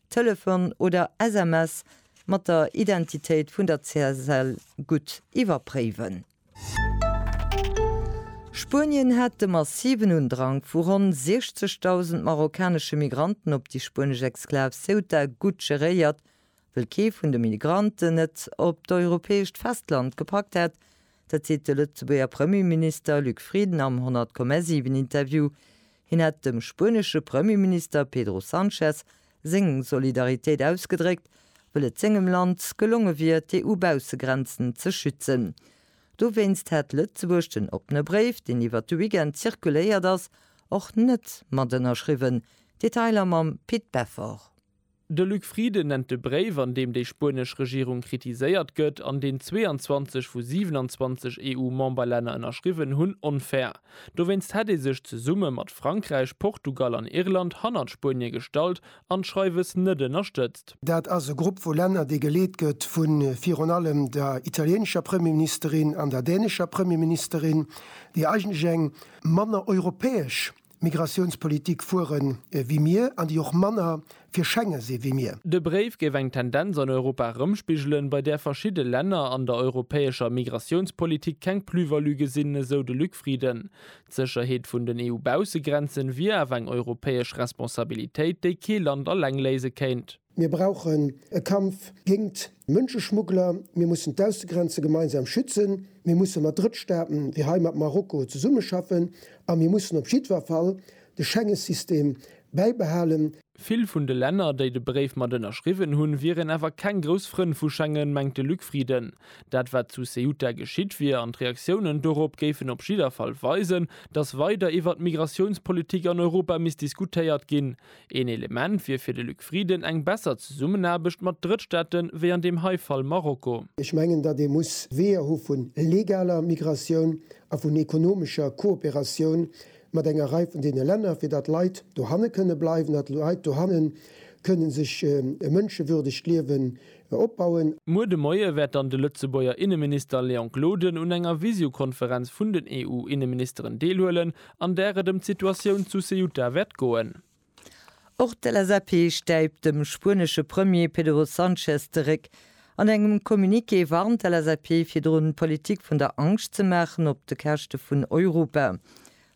Telefon oder SMS mat der Identitéit vun der CSL gutt iwwerpréiwen. Spuenien hat de massiven Undrang vu ronn 60.000 marokkanesche Migranten op déi spuenesch Exklav Ceuta gutt geréiert. Wëll kee vun de Migranten et op d'europäescht Festland gepackt hätt, Dat seet de Lëtzebuerger Premierminister Luc Frieden am 100,7 Interview. Hien hätt dem spuenesche Premierminister Pedro Sanchez seng Solidaritéit ausgedréckt, wëll et sengem Land gelonge wier, d'EU-Baussegrenzen ze schützen. Dowéinst hätt Lëtzebuerg den oppene Bréif, deen iwwert de Weekend zirkuléiert ass, och net mat ënnerschriwwen. Detailer mam Pit Beffort. De Luc Frieden nennt de Bréif, an deem déi spuenesch Regierung kritiséiert gëtt, an deen 22 vu 27 EU-Memberlänner ënnerschriwwen hunn, onfair. Dowéinst hätt ee sech zesumme mat Frankräich, Portugal an Irland hannert Spuenie gestallt an d'Schreiwes net ënnerstëtzt. Dat ass e Grupp vu Länner, dee geleet gëtt vu virun allem der italieenescher Premierministerin an der dänescher Premierministerin, déi eigentlech eng manner europäesch Migratiounspolitik fuere wéi mir an déi och manner fir Schengen si wéi mir. De Bréif géif eng Tendenz an Europa erëmspigelen, bei där verschidde Länner an der europäescher Migratiounspolitik keng Plus-value gesinn, esou de Luc Frieden. D'Sécherheet vun den EU-Baussegrenzen wier awer eng europäesch Responsabilitéit, déi kee Land alleng léise kéint. Mir brauchen e Kampf géingt Mënscheschmuggler. Mir mussen d'Aussegrenze gemeinsam schützen. Mir musse mat Drëttstaaten, ewéi hei mat Marokko, zesummeschaffen. A mir mussen op jiddwer Fall de Schengesystem bäibehalen. Vill vun de Länner, déi de Bréif mat ënnerschriwwen hunn, wieren awer keng grouss Frënn vu Schengen, mengt de Luc Frieden. Dat, wat zu Ceuta geschitt wier an d'Reaktiounen dorop géifen op jidder Fall weisen, datt weider iwwert d'Migratiounspolitik an Europa misst diskutéiert ginn. Een Element wier fir de Luc Frieden eng besser Zesummenaarbecht mat Drëttstaate wéi an deem hei Fall Marokko. Ech mengen, datt ee muss Weeër hu vu legaler Migratioun a vun ekonomescher Kooperatioun mat enger Rei vun deene Länner, fir datt Leit dohanne kënne bleiwen, datt Leit dohanne kënne sech e mënschewürdegt Liewen opbauen. Muer de Moie wäert dann de Lëtzebuerger Inneminister Léon Gloden un enger Visiokonferenz vun den EU-Inneministeren deelhuelen, an där et ëm d'Situatioun zu Ceuta wäert goen. Och d'LSAP stäipt dem spuenesche Premier Pedro Sanchez de Réck. An engem Communiqué warnt d'LSAP virdrun, d'Politik vun der Angscht ze maachen op de Käschte vun Europa.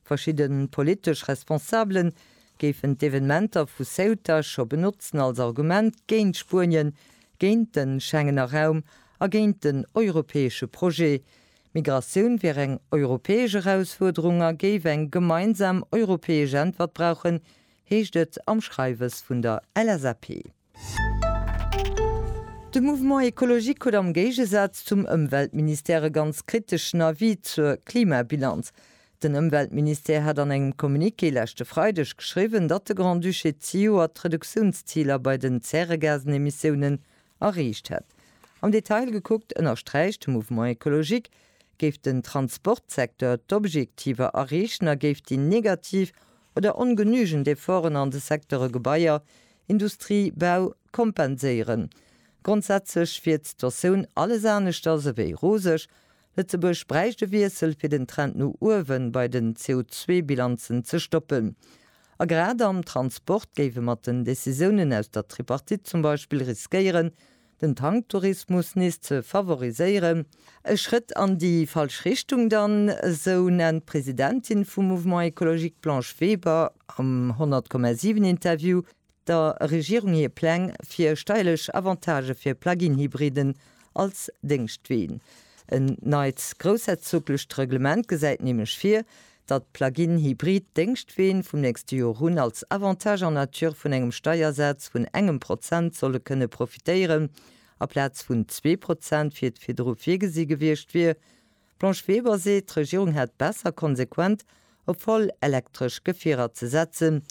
Verschidde politesch Responsabele géifen d'Evenementer vu Ceuta scho benotzen als Argument géint Spuenien, géint de Schengener Raum a géint den europäesche Projet. D'Migratioun wier eng europäesch Erausfuerderung a géif eng gemeinsam europäesch Äntwert brauchen, heescht et am Schreiwes vun der LSAP. De Mouvement Ecologique huet am Géigesaz zum Ëmweltministère e ganz kriteschen Avis zur Klimabilanz. Den Ëmweltministère hat an engem Communiqué leschte Freideg geschriwwen, datt de Grand-Duché zejoert d'Reduktiounsziler bei den Zäregasenemissiounen Erreecht hätt. Am Detail gekuckt ënnersträicht de Mouvement Ecologique, géif den Transportsecteur d'Objektiver erreechen a géif déi negativ oder ongenügend Efforten an de Secteure Gebaier, Industrie, Bau kompenséieren. Grondsätzlech wier d'Sitotioun alles aneschters ewéi roseg, Lëtzebuerg bräicht e Wiessel, fir den Trend no uewe bei den CO2-Bilanzen ze stoppen. A grad am Transport géif e mat den Decisiounen aus der Tripartite zum Beispill riskéieren, den Tanktourismus nees ze favoriséieren. E Schrëtt an déi falsch Richtung dann, esou nennt d'Presidentin vum Mouvement Ecologique Blanche Weber am 100,7 Interview der Regierung hir Pläng fir steierlech Avantagë fir Plug-in-Hybriden als Déngschtween. En neit groussherzoglecht Reglement gesäit nämlech vir, datt Plug-in-Hybrid-Déngschtween vum nächste Joer un als Avantage en nature vun engem Steiersaz vun engem Prozent solle kënne profitéieren, aplaz vun zwee Prozent, wéi et virdru virgesi gewiescht wier. D'Blanche Weber seet, d'Regierung hätt besser konsequent op voll elektresch Gefierer ze setzen.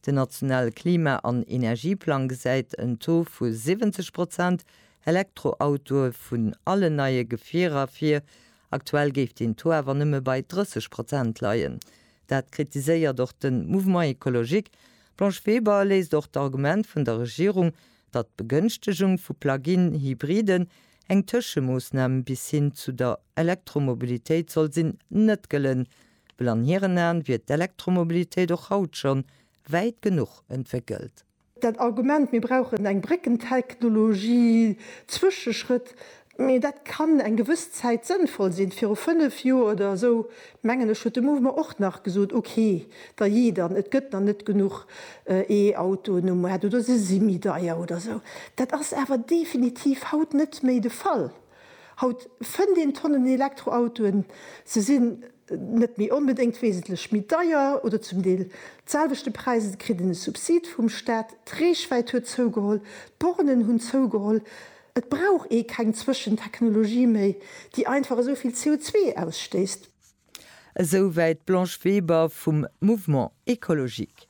Den nationale Klima an Energieplang gesäit en Taux vu 70 Prozent Elektroautoe vun allen neie Gefierer vir. Aktuell géif deen Taux awer nëmme bei 30 Prozent leien. Dat kritiséiert och de Mouvement écologique. D'Blanche Weber léisst och d'Argument vun der Regierung, datt d'Begënchtegung vu Plug-in-Hybriden Eng Tëschemoosnam bis hin zu der Elektromobilitéit soll sinn net gëllen, well an hiren Aen wier d'Elektromobilitéit och haut schonn wäit genuch entwéckelt. Dat Argument, mir brauchen eng Bréckentechnologie, Zwëscheschrëtt, mee dat kann eng gewëss Zäit sënnvoll sinn, viru fënnef Joer oder esou Mengen ech huet de Mouvement och nach gesot, ok, da jee dann, et gëtt dann net genuch E-Autoen um Maart oder se si méi deier oder esou. Dat ass awer definitiv haut net méi de Fall. Haut fënnt een Tonnen Elektroautoen, se sinn net méi onbedéngt wesentlech méi deier oder zum Deel d'selwechte Präis, et kritt een e Subsid vum Staat, d'Reechwäit huet zougeholl, d'Bornen hunn zougeholl, Et brauch ee keng Zwëschentechnologie méi, déi einfach esou vill CO2 ausstéisst. Esou wäit d'Blanche Weber vum Mouvement Ecologique.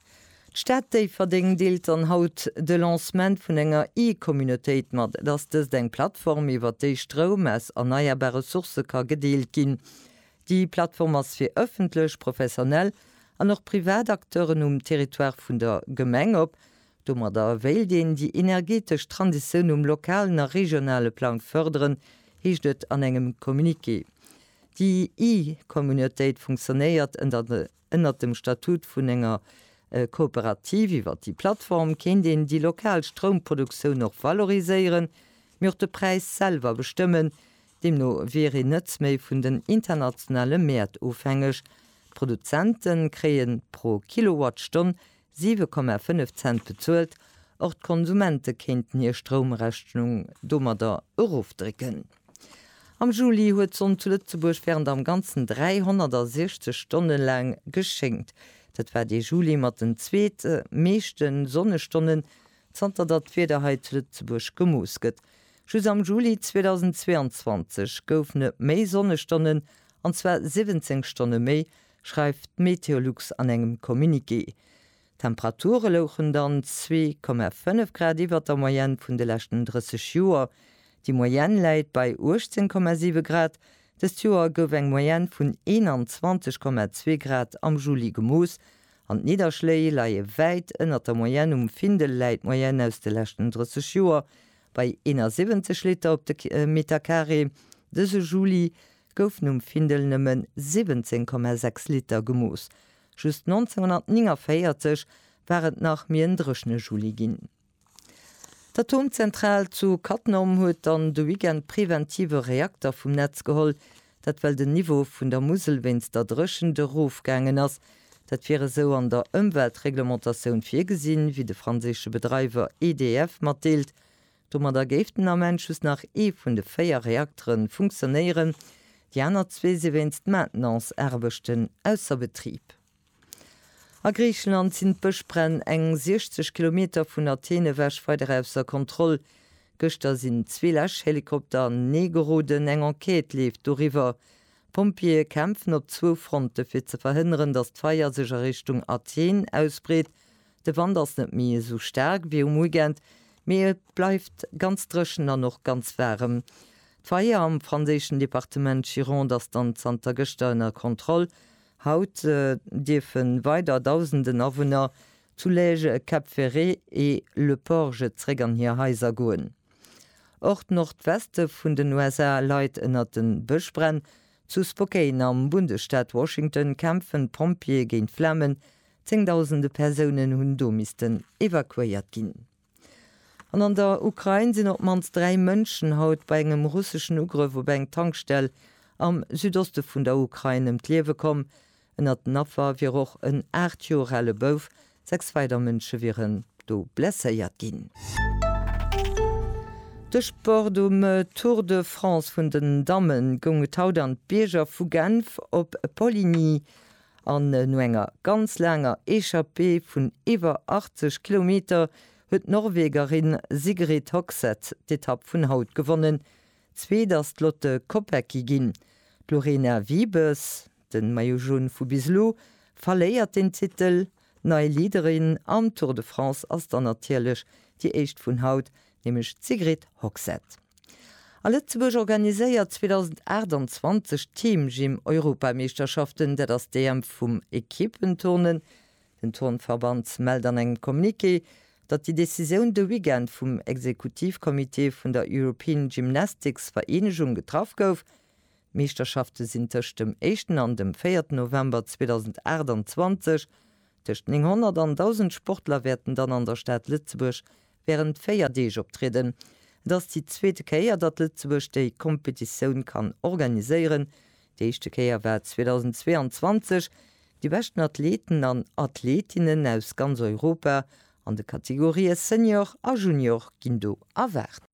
D'Stad Déifferdeng deelt dann haut de Lancement vun enger E-Communautéit mat. Et ass dëst eng Plattform, iwwer déi Stroum aus erneierbare Sourcë ka gedeelt ginn. Déi Plattform ass fir ëffentlech, professionell an och privat Acteuren um Territoire vun der Gemeng op. Domadder wéilt een déi energetesch Transitioun um lokalen a regionale Plang fërderen, heescht et an engem Communiqué. Déi E-Communautéit funktionéiert ënnert dem Statut vun enger Kooperativ. Iwwer déi Plattform kéint een déi lokal Stroumproduktioun och valoriséieren, mee och de Präis selwer bestëmmen. Deemno wier een net méi vun den internationale Mäert ofhängeg. D'Produzente kréie pro Kilowattstonn 7,5 Cent bezuelt, och d'Konsumente kéinten hir Stroumrechnung domadder erofdrécken. Am Juli huet d'Sonn zu Lëtzebuerg wärend am Ganzen 360 Stonne laang geschéngt. Dat war dee Juli mat den zweet meeschte Sonnestonnen, zanter datt d'Wieder hei zu Lëtzebuerg gemooss gëtt. Just am Juli 2022 goufen et méi Sonnestonnen, an zwar 17 Stonne méi, schreift d'Meteolux an engem Communiqué. D'Temperature louchen dann zwee Komma fënnef Grad iwwert der Moyenne vun de leschten 30 Joer. Déi Moyenne läit bei 18 Komma siwe Grad. Dëst Joer gouf eng Moyenne vun 21 Komma zwee Grad am Juli gemooss an d'Nidderschléi leie wäit ënnert der Moyenne. Um Findel läit d'Moyenne aus de leschten 30 Joer bei 71 Liter op de Metercarré dëse Juli. goufen um Findel nëmme 17,6 Liter gemooss. Just 1949 war et nach méi en dréchne Juli ginn. D'Atomzentral zu Cattenom huet dann de Weekend d'preventive Reakter vum Netz geholl. Dat well den Niveau vun der Musel wéinst der Dréchent erofgaangen ass. Dat wier esou an der Ëmweltreglementatioun virgesinn, wéi de franséische Bedreiwer EDF matdeelt. Domadder géif den Ament just nach ee vun de véier Reaktere funktionéieren, déi aner zwee si wéinst Maintenance-Aarbechten ausser Betrib. A Griicheland sinn d'Bëschbränn eng 60 Kilometer vun Athen ewech weider ausser Kontroll. Gëschter sinn zwee Läschhelikopter an den Ee geroden, eng Enquête leeft doriwwer. D'Pompjeeë kämpfen op zwou Fronte fir ze verhënneren, datt d'Feier sech a Richtung Athen ausbreet, De Wand ass net méi esou staark wéi um Weekend, mee et bleift ganz dréchen an och ganz waarem. D'Feier am franséischen Departement Gironde ass dann zanter gëschter ënner Kontroll. Haut dierfe weider Dausenden Awunner zu Lège, Cap Ferré e Le Porge zréck an hir Haiser goen. Och d'Nordweste vun den USA leit ënner de Bëschbränn. Zu Spokane am Bundesstaat Washington kämpfen d'Pompjeeë géint d'Flamen, Zéngdausende Persounen hunn do missten evakuéiert ginn. An an der Ukrain sinn op d'mannst dräi Mënschen haut bei engem russeschen Ugrëff op eng Tankstell am Südoste vun der Ukrain ëm d'Liewe komm. Ënnert den Affer wier och en aacht Joer ale Bouf. Sechs weider Mënsche wieren do blesséiert ginn. De Sport, Um Tour de France vun den Dammen goung et haut an d'Bierger vu Genf op Poligny. An no enger ganz laanger Echappée vun iwwer 80 Kilometer huet d'Norwegerin Sigrid Hogseth d'Etapp vun haut gewonnen. Zweet ass d'Lotte Kopecky ginn. D'Lorena Wiebes, de Maillot Jaune vu bis elo, verléiert den Titel. Nei Leaderin am Tour de France ass dann natierlech déi éischt vun haut, nämlech d'Sigrid Hogsett. A Lëtzebuerg organiséiert 2028 d'Team Gym Europameeschterschaften. Dat ass d'EM vum Equippenturnen. Den Turnverband mellt an engem Communiqué, datt déi Decisioun de Weekend vum Exekutivcomité vun der European Gymnastics Vereenegung getraff gouf. D'Meeschterschafte sinn tëscht dem éischten an dem véierten November 2028. Tëscht 900 an 1.000 Sportler wäerten dann an der Stad Lëtzebuerg wärend véier Deeg optrieden. Et ass déi zweete Kéier, datt Lëtzebuerg déi Kompetitioun kann organiséieren. Déi éischte Kéier war 2022. Déi beschten Athleten an Athletinnen aus ganz Europa an de Kategorië Senior a Junior ginn do erwaart.